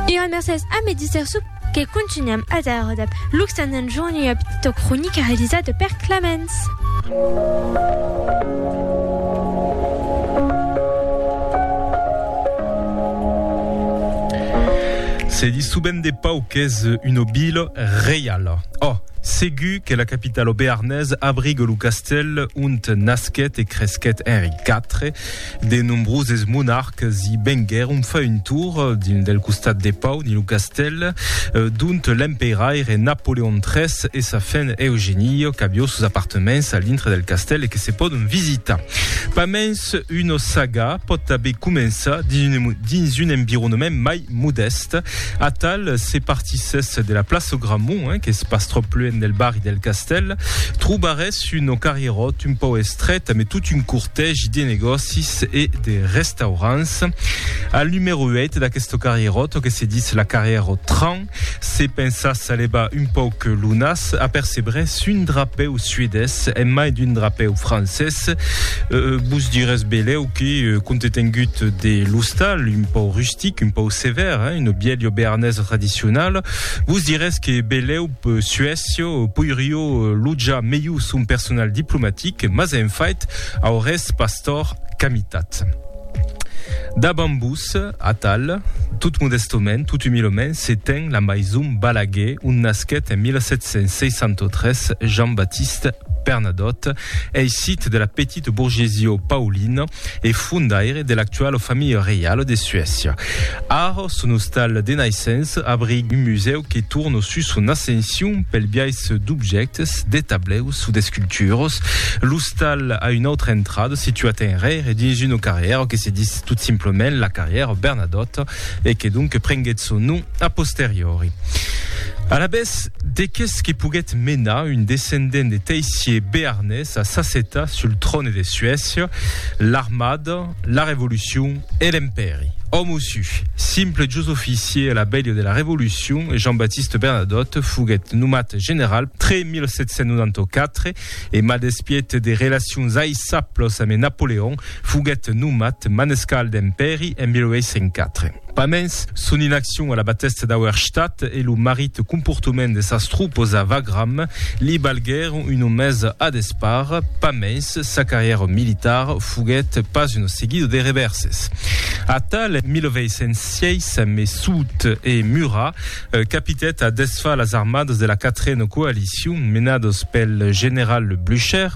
E un mercés a Medi Sersup que continuam a dar dab Luxanen Joan ua petita cronica realizada per Clemens. Se dis subent de pau qu'es una vila reiala. Ò, segur que la capitalo bearnés abrigue lo castèl ont nasquèt e cresquèt Henri iv, De nombroses monarques i venguèron far un tour dins del costat de Pau dins lo castèl d'ont l'emperaire Napoleon iii e sa fen Eugénie qu'avió sos apartements a l'intre del castèl e que se pòdon visitar. Pas mens una saga pòt tanben començar dins un environnement mai Modèst, atal se partissèsse de la plaça Gramont, qu'es pas tròp luènh del barri del Castèl, trobarèsse un carrieròt un pauc estrèt amé tot un cortègi de negòcis e de restaurants. Al numèro 8 d'aqueste carrieròt, que se ditz la carrieròt Tran, se pensasse a levar un pauc lo nas, apercebrèsse un drapèu suedés en mai d'un drapèu francés. Vos dirèsse belèu. que compte tengut de l'ostal un pau rustic, un pau sevèr, hein, une bièlio bearnesa tradicionala, vos dirès que belèu Suècia poiríeu lotjar melhor son personal diplomatic, mas en fait aurètz pas tòrt qu'amitat. Davant vos, atal, tot modèstament, tot umilament, se ten la maison Balaguer, ont nasquèt en 1763 Jean-Baptiste Bernadotte, Ei sit de la petite bourgesia paulina e fondaire de l'actuala familha reiala de Suècia. Ara, son ostal de naissença abriga un musèu que torna sus son ascension pel biais d'objèctes, de tableus o d'esculturas. L'ostal a una autra entrada, situat enrere dins una carrièra que se dis tot simplement la carrièra Bernadotte. e que donc prenguèt son nom a posteriori. Alavetz, de qu'es que poguèt menar un descendent de teissier bearnés a s'assetar sul tròne de Suècia? L'armada, la Revolucion e l'Empèri. Òme ossu, simple jos oficier a la bèlha de la Revolucion, Jean-Baptiste Bernadotte foguèt nomat general tre 1794 E mas despiet de relacions aisaplos ame Napoleon, foguet nomat manescal d'Empèri en 1804. Pas mens, son inaccion a la batèsta d'Auerstadt e lo marit comportament de sas tropas a Wagram li balguèron una mesa a despar. Pas mens, sa carrièra militar foguet pas una seguida de revèrses. Atal, en 1806, ame Soult e Murat, capitèt a desfar las armadas de la quatrena coalicion menadas pel general Blücher.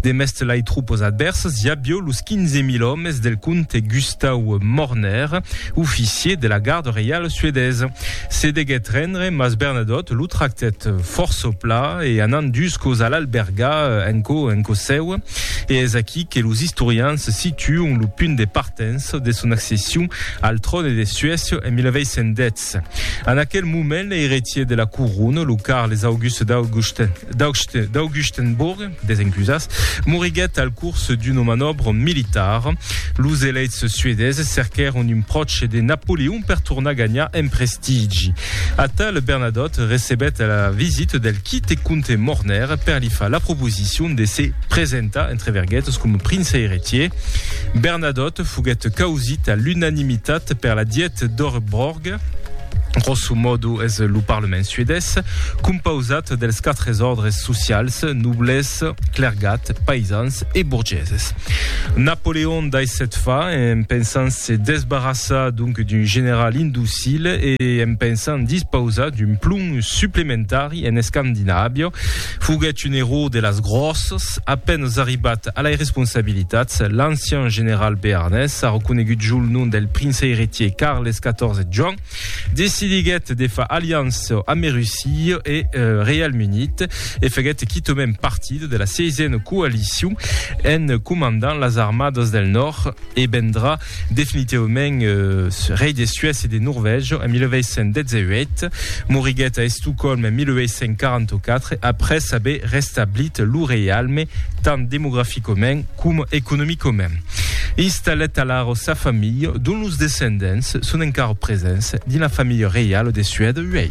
Demest lai tropas advèrsas, i avió los 15.000 òmes del comte Gustau Morner, oficier de la garda reiala suedesa. Se deguèt rendre, mas Bernadotte lo tractèt fòrça pla e anant dus còps a l'albergar en cò en cò seu. E es aquí que los istorians situon lo punt de partença de son accession al tròne de Suècia en 1810. En aquel moment, l'eiretier de la corona, lo Carles Auguste d'Augustenborg, desencusas, moriguèt al curs d'una manòbra militara. Los eleits suedeses cerquèron un pròche de Napoleon per tornar ganhar en prestigi. Atal Bernadotte recebèt la visita del quite comte Morner per li far la proposicion de se presentar, entre verguetas, coma prince eiretier. Bernadotte foguèt causit a l'unanimitat per la dièt d'or Borg. Grosso modo es lo parlament suedés compausat dels quatres òrdres socials, nobles, clergat, paisans e borgeses. Napoleon dai set fa en pensant se desbarrassar donc d'un general indocil e en pensant dispausar d'un plomb supplementari en Escandinàvia. Foguèt un erò de las gròssas. A penes arribat a lai responsabilitats, l'ancian general bearnés, arreconegut jo lo nom del prince eretier Carles XIV Joan, decidiguèt de far aliança amb Russia e Reialme Unit e faguèt quitament partit de la Seizièna Coalicion en comandant las armadas del Nòrd e vendrà Definitivament rei de Suècia e de Norvègia en 1818, moriguèt a Estocòlm en 1844 après aver restablit lo reialme tant demograficament coma economicament. Installèt alara sa familha, dont los descendents son encara presents dins la familha reiala de Suèda uèi.